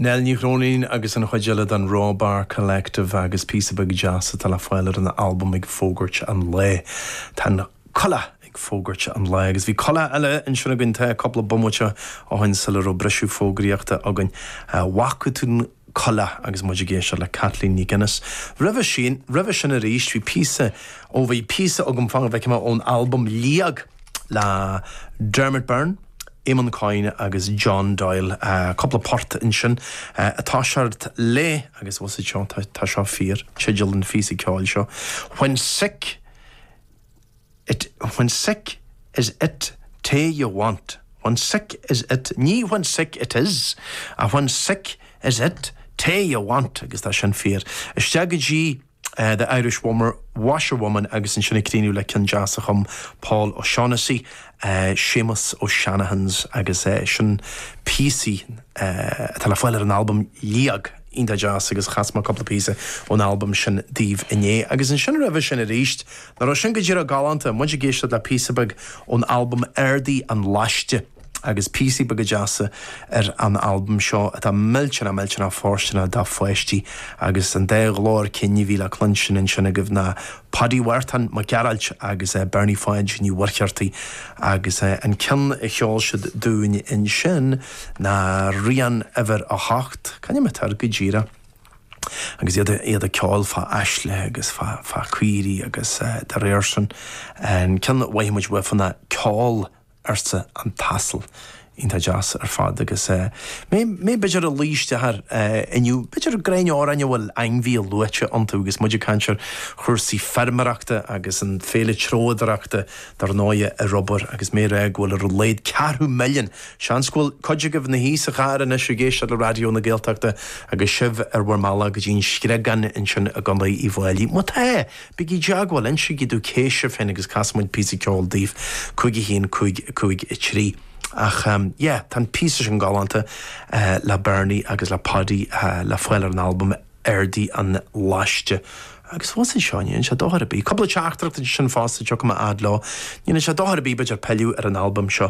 Nell Ní Chróinín agus an chuid eile den Raw Bar Collective agus píosa beag deas atá le fáil ar an albam Ag Fógairt an Lae. Tá an coileach ag fógairt an lae agus bhí coileach eile ansin againn tá cúpla bomaite ó shin sula raibh briseadh fógraíochta againn. Bhfaca tú coileach agus muid ag éisteacht le Kathleen MacInnes. Roimhe sin, roimhe sin arís, bhí píosa, ó bhí píosa agam fan go bhfeicfidh mé, ón albam Liag le Dermot Byrne, Éamonn Coyne agus John Doyle. Cúpla port ansin atá seort le, agus bhfuil a fhios agat seo, tá seo fíor, teideal an phíosa ceoil seo, When Sick, It, when sick, is it tae you want, when sick, is it, ní when sick, it is, ach when sick, is it tae you want, agus tá sin fíor. Isteach go dtí The Irish Woman, Washerwoman agus ansin ag críochnú le ceann deas a chum Paul O'Shaughnessy, Séamus O'Shanahan's agus sin píosaí atá le fáil ar an albam Liag, iontach deas agus chas mé cúpla píosa ón albam sin daoibh inné. Agus ansin roimhe sin aríst Ná raibh sin go díreach galánta? Muid ag éisteacht le píosa beag ón albam Ardaigh an Laiste, agus píosaí beaga deasa ar an albam seo atá millteanach millteanach fóirsteanach do pháistí, agus an dá ghlór cinn a bhí le cluinstin ansin agaibh ná Páidí Mhárthain Mac Gearailt agus Bernie Pháid Ní Mhuircheartaigh, agus an ceann a cheol siad dúinn ansin ná Rian Uimhir a hOcht, c'ainm atá air go díreach? agus iad ag ceoil fá aisle agus fá caoirí agus dá réir sin. An ceann a bhfaighimid uafa ná Ceol, arsa an t-asal. Iontach deas ar fad agus mé b'fhéidir ag luí isteach inniu, b'fhéidir greann amhráin a bhfuil ainmhí luaite iontu agus muid ag caint ar chúrsaí feirmeoireachta agus an Féile Treabhdóireachta dar ndóighe ar obair agus mé ag rá go bhfuil ar a laghad ceathrú milliún Seans go bhfuil cuid agaibh ina shuí sa charr anois ag éisteacht le Raidió na Gaeltachta agus sibh ar bhur mbealach go dtí an Screagán ansin i gContae Uíbh Fhailí. Má tá, bígí i dteagmháil, insígí domh cé sibh féin agus casfaimid píosa ceoil daoibh. 51553. Ach yeah, tá an píosa sin galánta le Bernie agus le Páidí le fáil ar an albam Ardaigh an Laiste. Agus bhfuil a fhios agat seo, níl sé dochar ar bith. Cúpla teachtaireacht ansin fosta, tiocfaidh mé fhad leo. Níl sé dochar ar bith, b'fhéidir pilleadh ar an albam seo.